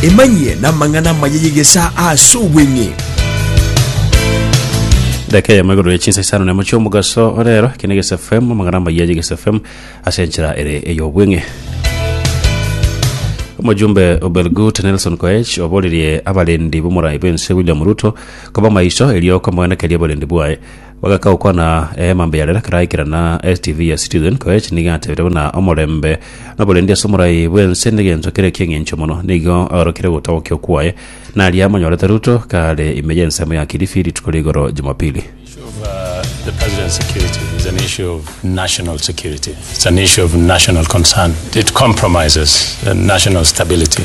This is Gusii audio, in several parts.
Emanyie namang'ana amaya y'egesaa ase obweng'e. daka eyemo igoro yechinsa isano nemo chiomogaso orero eke ne Gesa FM amang'ana amaya ye Gesa FM ase enchera ere eyobweng'e omojumbe obelgut nelson koech oborerie abarendi bomorai bwense william ruto koba maiso erio komoenekeria oborendi bwaye Bagaka gokwana eema mbe ya rela keraikera na STV ya Citizen Koech nigo atebire buna omorembe noborendi ase omorai bw'ense negencho kere eki'engencho mono nigo agarokire gotagokia kwaye naria amonyorete Ruto kare ime y'ensemo ya Kilifi rituko rigoro Jumapili. issue of uh, the president's security is an issue of national security. It's an issue of national concern. It compromises uh, national stability.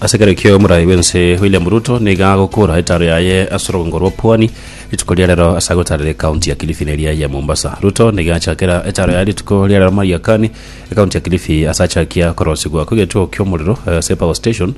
Ase ekero ekio omorai bw'ense William Ruto nigo agokora etaaro yaye ase orogongo rwa Pwani rituko ria rero ase agotaarera ekaunti ya Kilifi neria ya Mombasa. Ruto nigo achakera etaaro yaye rituko ria rero Mariakani, ekaunti ya Kilifi ase achakia korosigwa kw'egetuo ki'omorero ase Power Station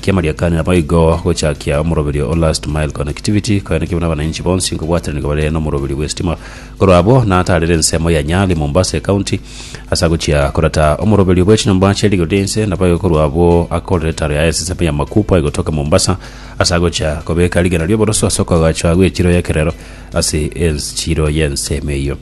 kia Mariakani naboigo gochakia omoroberio o Last Mile Connectivity koyanekigwe nabananchi bonsi nkobwatanigwa bare nomoroberio bw'estima korwa abwo nataarere ensemo ya Nyali, Mombasa ekaunti Ase agochia korata omoroberio bwe chinyomba chie rigori ri'ense na bayokorwa abwo, akorera etaro yaye ase ensemo ya Makupa egotoka Mombasa, ase agochia kobeka rigena ri'oboroso ase okoagachwa gw'echiro y'ekerero ase enchiro y'ensemo eyio.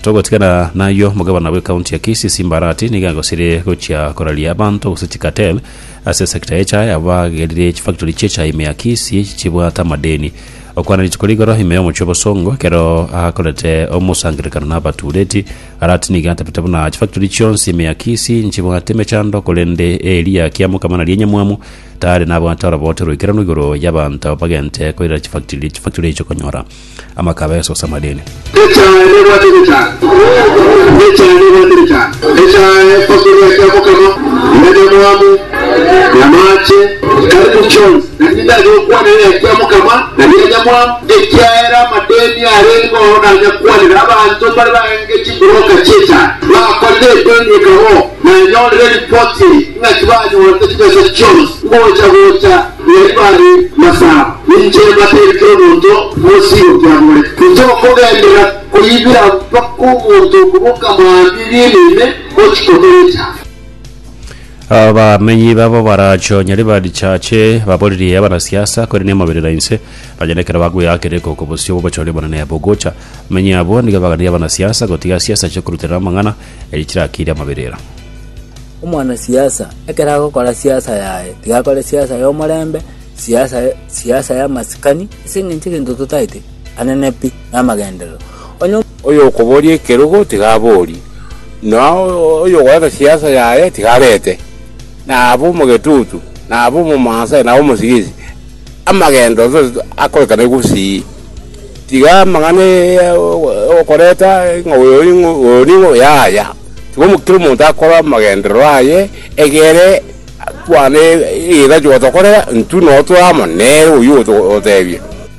Togotigana nayio, omogabana bw'ekaunti ya Kisii Simba Arati nigo agosirie gochia koraria abanto gose chikatel ase esecta y'echae abagerire chifactori chi'echae ime ya Kisii chibwate amadeni. Okwana rituko rigoro ime y'omochie o Bosongo ekero akorete omosangererekano na abatureti, Aratinige atebete buna chifactori chionsi ime ya Kisii nchibwate emechando, korende eri ya Kiamokama naria enyamwamu, tare nabwate orobote oroikeranu igoro y'abanto bagente koirera chifactori chifactori echio konyora amaka abeso ase amadeni. Echae nebwate nechae, echae nebwate nechae, echae factori ya Kiamokama, ya enyamwamu, y'amache, karibu chionsi. Riginya yokwanera eria mokama na ria nyamwamu, ekiagera amadeni are igoro nanyakwanera abanto mbare baenge chimburoka chi'echara. Bakorire edeni ekabo nanyorire ripoti eye, ng'a tibanyorete chibesa chionsi ngocha gocha riari bare masaba. Ninche mbateire kera omonto mosigo kiamore. Ninche okogenderera koyibira mpaka omonto okoboka mambia eria enene, ochikotorecha. Abamenyi babo baracho nyari ba richache, baboririe abanasiasa, korende emoberera inse, nonya nekero bagweakire iko oko bosio bw'obochori obonene bogocha. Abamenyi abwo nigo baganirie abanasiasa gotiga siasa ase koruterera amang'ana, erio chirakiire amaberera. Omwanasiasa ekero agokora siasa yaye, tiga akore siasa y'omorembe, siasa siasa y'amasikani, ase eng'encho egento totaete anene pi namagenderero. Onye. Oyokoboria ekerogo tigaborie, na oyogoeta siasa yaye tigarete, na abe omogetutu, na abe omomansai, na abe omosigisi, amagendo onsi onsi akorekane gusii. Tiga amang'ana ya okoreta ng'a oyo ning'o, oyo ning'o, yaya. Tiga omo, kera omonto akore amagenderero aye egere kwane egeka togotokorera intwe noo tore amo nere oyio ogo togotebia.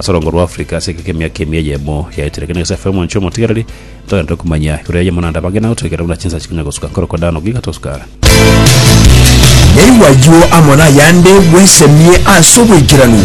ase orongo rwa Africa ase egeka emiaka ime eyemo yaetire ekero Nyasae aferwa omwancho omotigereri ntogende komanya igoro ya Yemuna naende abange nagotoigera buna chinsa chikonya gosuka nkorokwa Dano giga tosuka. Naigwa ayio amo nayande bwesemie ase oboikeranu.